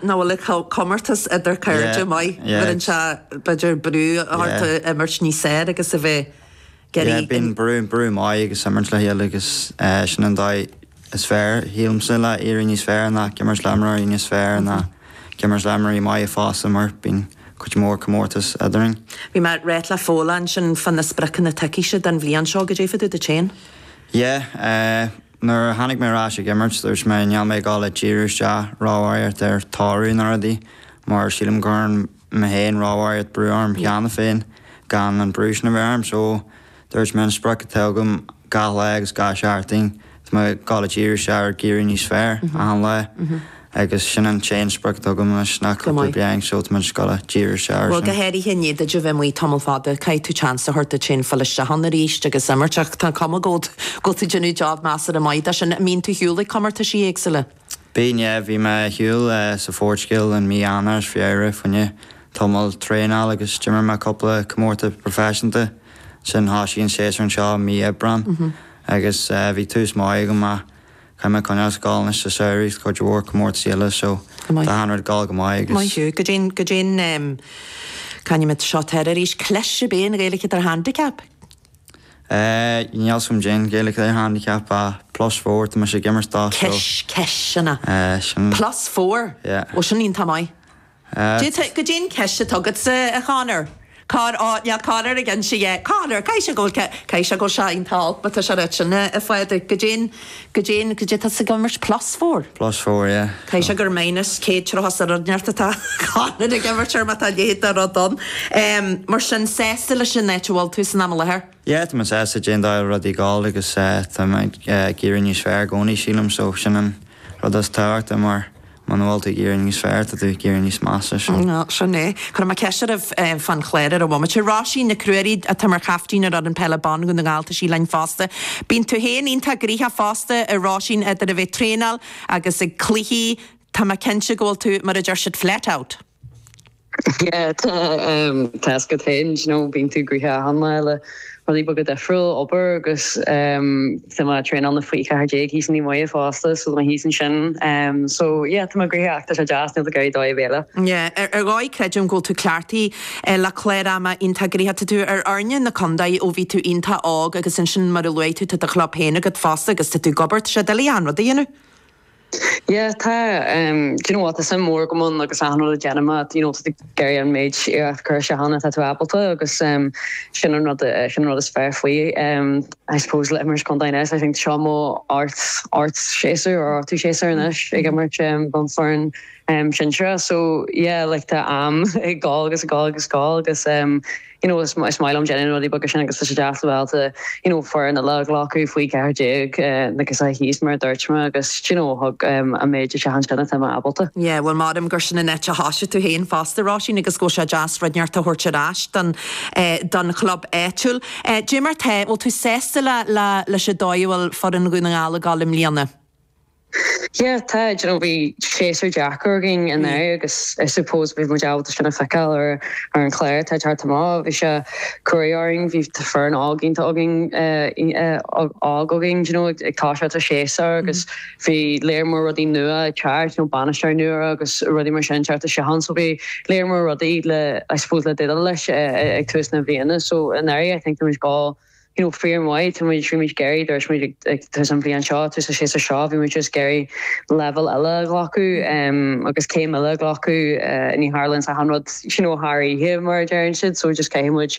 nó bhfuil a comórtas idir cairde maith, bheireann sé b'fhéidir brú ort a imirt níos fearr agus a bheith ag Yeah, bíonn brú, brú maith agus imirt le chéile agus sin an dóigh is fearr, sílimse, le éirí níos fearr ná ag imirt le imreoirí níos fearr ná ag imirt le imreoirí maithe fosta mar bíonn cuid mhór comórtas eadrainn. Bhí mé réidh le foghlaim sin fá na spriocanna atá agatsa don bhliain seo, go dtuigfeadh tú duit féin. Yeah. Nuair a tháinig mé ar ais ag imirt, dúirt mé, níl mé ag gabháil a díriú isteach róbharraíocht ar toradh nó rudaí, mar sílim go gcuireann mé féin róbharraíocht brú orm cheana féin gan an brú sin a bheith orm. So, dúirt mé, an sprioc atá agam gach lá agus gach seachtain, tá mé ag gabháil a díriú isteach ar ag éirí níos fearr achan lá. Agus sin an t-aon sprioc atá agam anois, ná cúpla bliain so tá mé just ag gabháil a díriú isteach ar sin. Bhuel, go háirithe i ndiaidh duit a bheith amuigh tamall fada, caithfidh tú seans a thabhairt duit féin filleadh isteach ann arís agus imirt, ach tá an chuma air go bhfuil tú ag déanamh job measartha maith de sin. An mbíonn tú ar shiúl ag comórtaisí éagsúla? Bíonn, yeah. Bhí mé ar shiúl sa Phortaingéil in mí Eanáir is Feabhra, fá choinne tamall traenáil agus d'imir mé cúpla comórtas proifisiúnta. Ansin thoisigh an séasúr anseo mí Aibreán agus bhí tús maith agam, yeah. Caithfidh mé coinneáil ag gabháil anois sa samhradh is cuid mhór comórtaisí eile so tá achan rud ag gabháil go maith agus. Maith thú. Go deimhin, go deimhin. C'ainm seo atá air arís. Cleas ar bith an Ghaeilge atá ar handicap? Eh, níl a fhios agam caidé an Ghaeilge atá ar handicap ach plus four atá mise ag imirt dó so. Cis, ciseanna. Eh, sin. Plus four? Yeah. Ó sin iontach maith. D'fhéadfadh caidé an chis atá agatsa, a Chonor. Char mhaith le Conor a inse? Conor, caithfidh sé go bhfuil, caithfidh sé go bhfuil sé iontach olc, má tá sé ag ráit sin, a Phádraic, go dtéann, go dtéann, go dtéann, tá sa gcomhimirt plus four. Plus four, yeah. Caithfidh sé gur minus céad tráth sa rud inteacht atá Conor ag imirt air má tá a leithéid de rud ann. Mar sin, sásta leis an áit a bhfuil tú san am i láthair? Yeah, tá mé sásta leis an dóigh a bhfuil rudaí ag gabháil agus tá mé ag éirí níos fearr i gcónaí sílim so sin an rud is tábhachtaí mar, Muna bhfuil tú ag éirí níos fearr, tá tú ag éirí níos measa, sin. Sin é. Cuirfidh mé ceist oraibh fán chlár ar an bhomaite. Róisín Nic Ruairí atá mar chaiftín ar fhoireann peile ban Dhún na nGall, tá sí linn fosta. Bíonn tú féin iontach gnoitheach fosta a Róisín, idir a bheith traenáil agus ag cluichí, tá mé cinnte go bhfuil tú, mar a deir siad flat out. Tá a fhios agat féin, bíonn tú gnoitheach achan lá le rudaí beaga difriúil, obair agus tá mé traenáil na faoi 14 thíos i Naomh Muire fosta, so tá mé thíos ansin. So yeah, tá mé gnoitheach ach tá sé deas, níl tú ag iarraidh dóigh ar bith eile. Yeah, ar dhóigh creidim go bhfuil tú cleachtaithe le cláir ama iontach gnoitheach. Tá tú ar fhoirne na contae ó bhí tú iontach óg agus ansin mar a luaigh tú tá do chlub féin agat fosta agus tá tú ag obair, tá sé doiligh achan rud a dhéanamh. Yeah tá ehm do you know what tá suim mhór agam ann agus achan rud a déanaim at you know tá ag iarraidh an méid iarracht cur isteach ann atá tú ábalta agus ehm sin an rud sin an rud is fearr faoi ehm I suppose le imirt contae anois I think seo mo ocht ocht séasúr or ochtú séasúr anois ag imirt ehm don foireann ehm sinsearach so yeah like tá am ag gabháil agus ag gabháil agus ag gabháil agus ehm You know is is maith liom déanamh na rudaí beaga sin agus tá sé deas le bheith ábalta you know foireann eile a ghlacadh faoi ceathair déag na gasúraí thíos mar a dúirt mé agus do you know thug an méid isteach ansin atá mé ábalta. Yeah, bhuel maram gur sin an áit a thoisigh tú féin fosta Róisín agus go bhfuil sé deas rud inteacht a thabhairt ar ais don eh don chlub áitiúil. Eh cad é mar atá, bhfuil tú sásta le le leis an dóigh a bhfuil foireann Dhún na nGall ag gabháil i mbliana? Yeah, tá, you know, bhí séasúr deacair againn anuraidh agus I suppose bhí muid ábalta sin a feiceáil ar ar an chlár atá ag teacht amach. Bhí sé cruaidh orainn, bhí foireann óg iontach againn, eh, óg againn, do you know, ag toiseacht an séasúr agus bhí lear mór rudaí nua ag teacht, you know, bainisteoir nua agus rudaí mar sin ag teacht isteach ann so bhí lear mór rudaí le, I suppose, le déileáil leis ag tús na bliana so anuraidh I think bhí muid go you know, fíor mhaith, tá muid, bhí muid ag iarraidh, dúirt muid ag tús an bhliain seo, tús an séasúr seo, bhí muid just ag iarraidh leibhéal eile a ghlacadh agus céim eile a ghlacadh, ní tharlaíonn achan rud, you know, thar oíche, mar a deireann siad, so just caithfidh muid,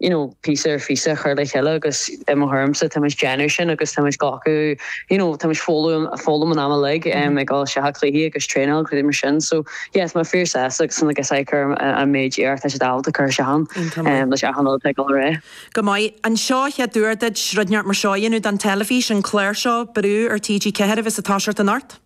you know, píosa ar phíosa a chur le chéile agus i mo thuairmse, tá muid déanamh sin agus tá muid glacadh, you know, tá muid foghlaim an am uilig ag fháil seacha cluichí agus traenáil agus rudaí mar sin, so. Yes, mé fíor sásta like something like ag cur an méid iarracht is atá siad ábalta cur isteach ann leis achan rud ag dul ar aghaidh. Go maith. An seo an chéad uair duit rud inteacht mar seo a dhéanamh don teilifís, an clár seo, brú ar TG4 a bheas ag toiseacht anocht?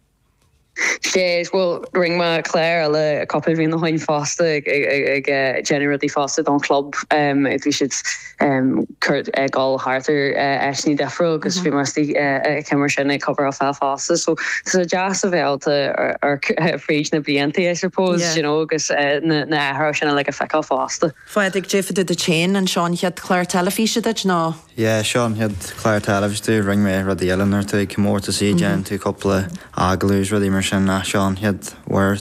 Sea, bhuel, rinn mé clár eile cúpla bliana ó shoin fosta ag déanamh rudaí fosta don chlub, bhí siad cuairt ag dul thart ar áiteanna difriúla agus bhí mé istigh ag céimeanna sin ag cover off fosta so tá sé deas a bheith ábalta ar fríd na blianta I suppose you know agus na na athruithe sin uilig a feiceáil fosta. Pádraig cad é fá dtaobh duit féin, an seo an chéad chlár teilifíse duit nó? Yeah seo an chéad chlár teilifíse domh rinne mé rudaí eile nuair atá tú ag comórtasaí déanann tú cúpla agallamh is rudaí mar sin ach seo an chéad uair